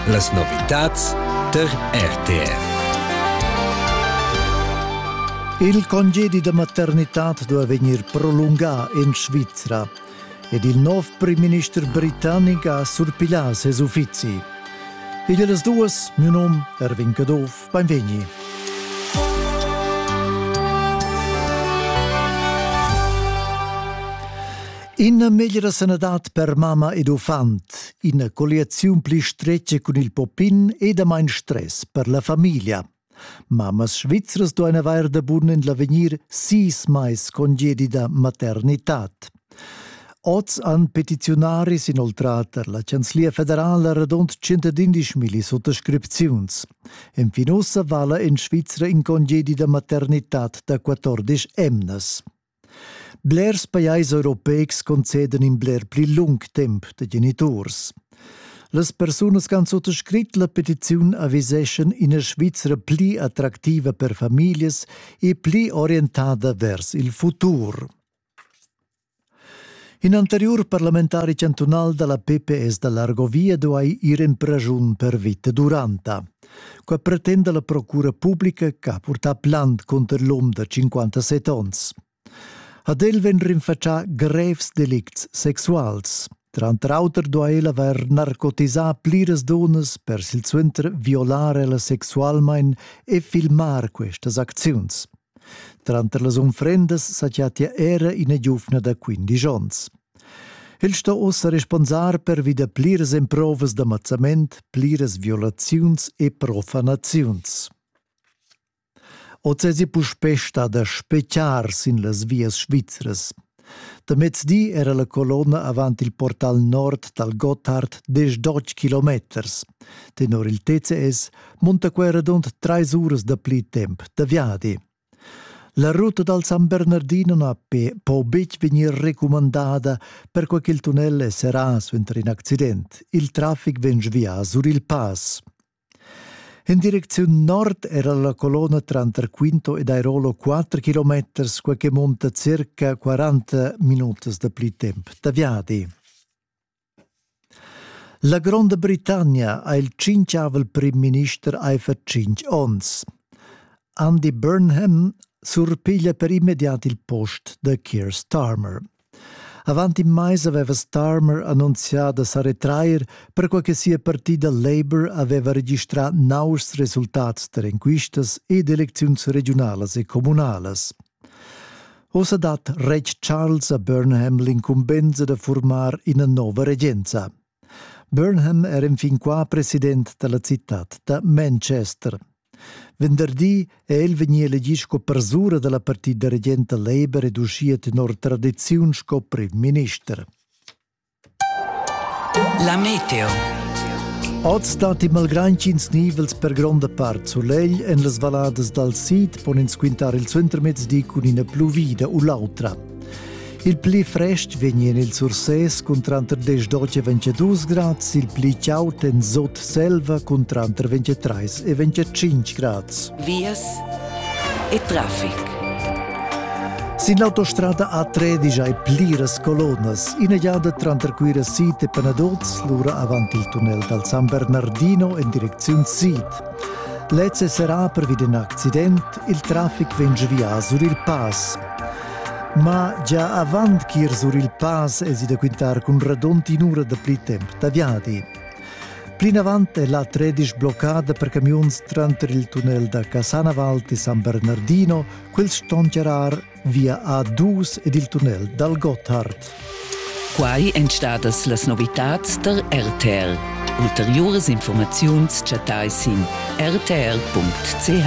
Las novitads tar RTR. Il congedi da maternitad dueva vegnir prolungà en Svizra ed il nov primminister britannic ha surpiglià ses uffizi. Ed las duas, mio num Erwin Caduff, beinvegni. Ina meglra sanadad per mamma ed uffant, ina colliaziun pli stretga cun il poppin e damain stress per la famiglia. Mammas svizras duain avair da bun en l'avegnir sis mais congedida maternitad. Oz han petiziunaris inoltrà tar la Chanzlia federala radund 111 milli suttascripziuns. Enfin ussa vala en Svizra in congedi da maternitad da 14 emnas. Blers pajais europeics concedan in bler pli lung temp da geniturs. Las persunas che han suttascrit la petiziun aviseschan ina Svizra pli attractiva per famiglias e pli orientada vers il futur. In anteriur parlamentari chantunal dalla PPS da Largovia duai ir en praschun per vita duranta. Qua pretenda la procura publica che ha purtà plant cunter l'um da 57 onns. Ad el vegn rinfatschà grevs delicts sexuals. Tranter auter duai el avair narcotisà pliras dunnas per silsuenter violar ella sexualmain e filmar questas acziuns. Tranter las unfrendas sa chattia era ina giuvna da quindisch onns. El sto ussa responsar per vida pliras emprovas da mazzament, pliras violaziuns e profanaziuns. Oz èsi puspè stada spechiar sin las vias svizras. Da mezdi era la colonna avant il portal nord dal Gotthard diesch kilometers. Tenor il TCS munta quei radund treis uras da pli temp da viadi. La ruta dal San Bernardino na po betg vegnir recumandada perquai ch'il tunnel è serrà suenter in accident. Il traffic vegn via sur il pass. In direcziun nord era la colonna tranter Quinto ed Airolo 4 km, quai che munta circa 40 minutas da pli temp da viadi. La Gronda Britannia ha il tschinchavel prim-minister aifer tschintg onns. Andy Burnham surpiglia per immediat il post da Keir Starmer. Avant in mais aveva Starmer annunzià da sa retrair, perquai che sia partida Labour aveva registrà nauschs resultats tar enquistas ed elecziuns regiunalas e communalas. Ossa dat retg Charles a Burnham l'incumbensa da formar ina nova regenza. Burnham era infin qua president dalla citad da Manchester. Venderdi è el vegnì elegì sco persura dalla partida regenta Labour ed uschia tenor tradiziun sco premierminister. La meteo. Oz datti malgrain ch'ins nivels per gronda part sulegl en las valadas dal sid pon ins quintar il suentermezdi cun ina pluvida u l'autra. Il pli frest vegnien il Sursès cun tranter 10 e 22 grads, il pli caud en Sot-Selva cun tranter 23 e 25 grads. Vias e traffic. Sin l'autostrada A13 hai pliras colonas, ina giada tranter Cuira Sid e Panaduz, lura avant il tunnel dal San Bernardino en direcziun sid. Lez è serrà pervi d'in accident, il traffic vegn via sur il pass. Ma gia avant ch'ir sur il pass esi da quintar cun radund in'ura da pli temp da viadi. Plinavant è la tredisch bloccada per camiuns tranter il tunnel da Casanaval e San Bernardino, quels ston charar via A2 ed il tunnel dal Gotthard. Quai èn stadas las novitads tar RTL. Ulteriuras informaziuns chattai sin rtl.ch.